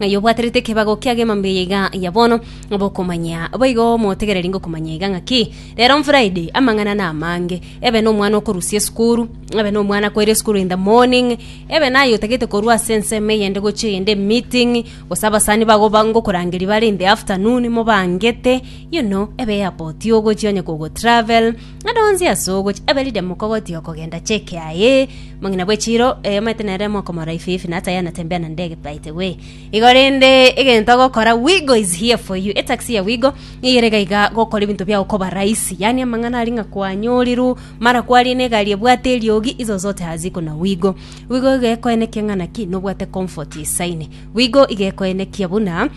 Ng'ai obwaterete ekebago kiagima mbuya iga ya bono bokomanya? Boigo motegereri ngokomanya iga ng'aki. Rero Friday, amang'ana namange. Ebe nomwana okorusia esukuru, ebe nomwana akoire esukuru in the morning, ebe naye otagete korwa ase ensemo eyende gochia eyende emeeting, gose abasani bago ba- ngokorangeria bare in the afternoon mobangete, you know, ebe airport ogochia onye kogotravel, Ng'ende onsi ase ogochia abe riria mokogotiga kogenda cheke aye, mong'ina bwe chiiro, ee, omanyete nere mokomora ifi ifi, na ata yana tembea na ndege paetegwe. Igo rende egento ogokora Wigo is here for you. Etaxi ya Wigo niyere iga iga gokora ebinto biago koba rahisi. Yaani amang'ana aria ng'a kwanyorirwe, mara kwaria ne egari ebwate eriogi, izo zote haziko na Wigo. Wigo iga ekoenekia ng'a naki nobwate comfort esaine. Wigo iga ekoenekia buna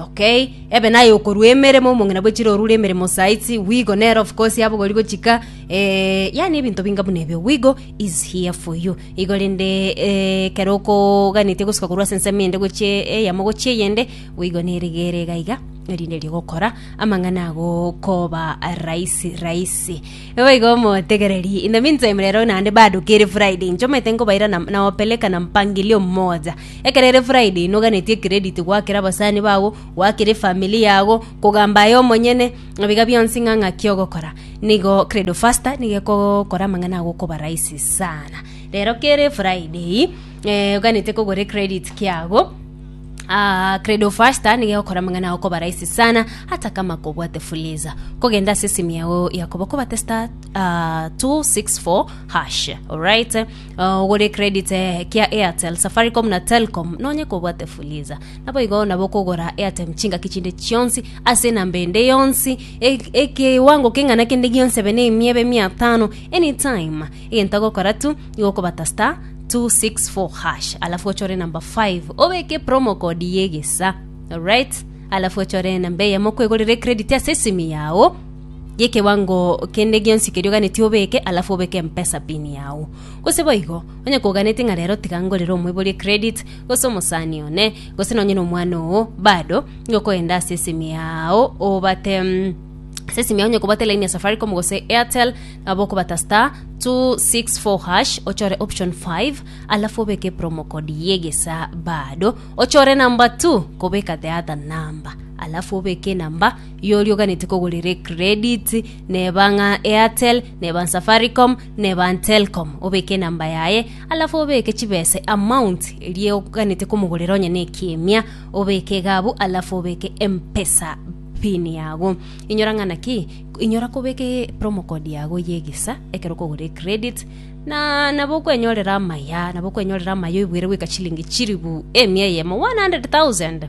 Okay, ebe naye okorua emeremo, omong'ina bwe chire orure emeremo saitsi, wigo nere of course abogori gochika eh, yani ebinto binga buna ebio wigo is here for you igo rende eh, kero okoganetie gosuka korwa ase ensemo ende gochie eyemo gochie eyende wigo nerigere iga iga erinde rigokora amang'ana ago koba rahisi rahisi boigo motegereri in the meantime rero naende bado kere friday inche omanyete nkobaira na, nawapeleka na mpangilio mmoja Ekero ere Friday noganetie ecredit goakera abasani bago, goakera efamily yago, kogamba aye omonyene, ebiga bionsi ng'a ng'aki ogokora. Nigo Credo Faster nigo ekogokora amang'ana ago okoba rahisi sana. Rero kere Friday eh, oganete kogora ecredit kiago, Ah, Credo Faster nigo egokora amang'ana ago okoba rahisi sana ata kama kobwate fuliza. Kogenda ase esimi yago ya koba okobate star ah, 264 hash, alright. Ogore credit kia Airtel, Safaricom na Telkom nonye kobwate Fuliza. Naboigo nabo okogora Airtime chingaki chinde chionsi ase enamba ende yonsi e- ekewango keng'ana kende gionsi ebe na emia ebe mia tano anytime. Egento ogokora tu igo okobata star 264 hash alafu ochore enamba 5 obeke promo code yegesa. Alright? Alafu ochore enamba eyemo okwegorera ecredit ase esimi yao gekewango kende gionsi keria oganeti obeke, alafu obeke empesa pin yao. Gose boigo, onye koganeti ng'a rero tiga ngorere omoibori ecredit, gose omosani one, gose nonye nomwana oo, bado, nigo okoenda ase esimi yao obate mm, ase esimi yao onye kobwate line ya safaricom gose airtel, nabo okobata star 264 hash ochore option 5 alafu obeke promo code ye egesaa bado ochore number 2 kobeka the other number alafu obeke enamba Igo orioganete kogorera ecredit, neba ng'a Airtel, neba Safaricom, neba Telkom, obeke enamba yaye, alafu obeke chibesa amount eria oganete komogorera onye na ekiemia, obeke egabu, alafu obeke M-pesa pin yago. Inyora ng'a naki, inyora kobeka e- promo code yago ya egesa ekero okogora ecredit, na nabo okwenyorera amaya, nabo okwenyorera amaya oibuere goika chilingi chilifu emia eyemo, 100,000.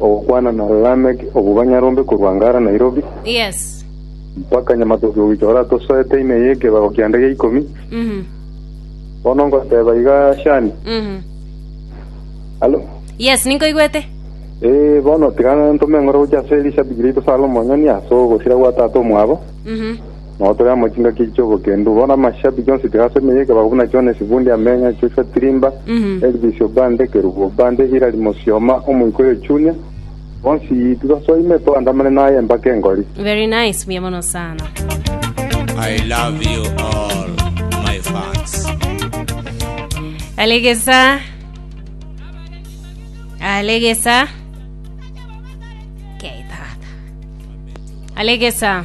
Ogokwana na Lameck obwo banyarombe korwa Ngara Nairobi. Yes. Mpaka Nyamatoke goika ora tosoete ime ye kebago kia ndege ikomi. Mhm. Bono ngoteba iga Shani. Mhm. Halo. Yes, ninkoigwete. Eh, bono tiga ntome engoro gochia ase Elisha bigira ito Salomo onyoni ase ogosira gwa tata omwabo. Mhm. Nao tore amo chingaki echi chi'obokendu. Bono amashabiki onsi tiga ase emeyio ekebako buna John Esibundi amenya, Joshua Tirimba, Elvis Obande, Kerubo Obande, Hilary Mosioma, omoika oyo Junior, bonsi tibasoa ime toandamane naye empaka engori. Very nice, buya mono sana. I love you all, my fans. Alegesa. Alegesa. Okay, tata. Alegesa.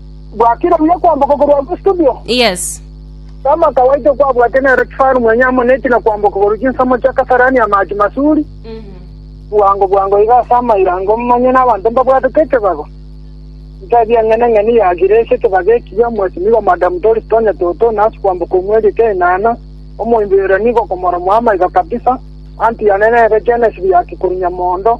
Gwakire buya kwamboka korwa ase estudio? Yes. Tama kawaito kwabwate nero kifaru mwenye amo neti na kwamboka korwa chinsemo chia Kasarani amache masuri, bwango bwango iga ase amaira ango momanye n'abanto mbabwatete ekebago. Ntebi eng'ene ng'eni ya Giresi ekebago ekiya, Mwesimigo Madam Doris Tonya Toto, nasi kwamboka omweri eke enana, omoimbi oira nigo okomoromwa amaiga kabisa, anti yane nere Genesis ya Kikurinyamondo,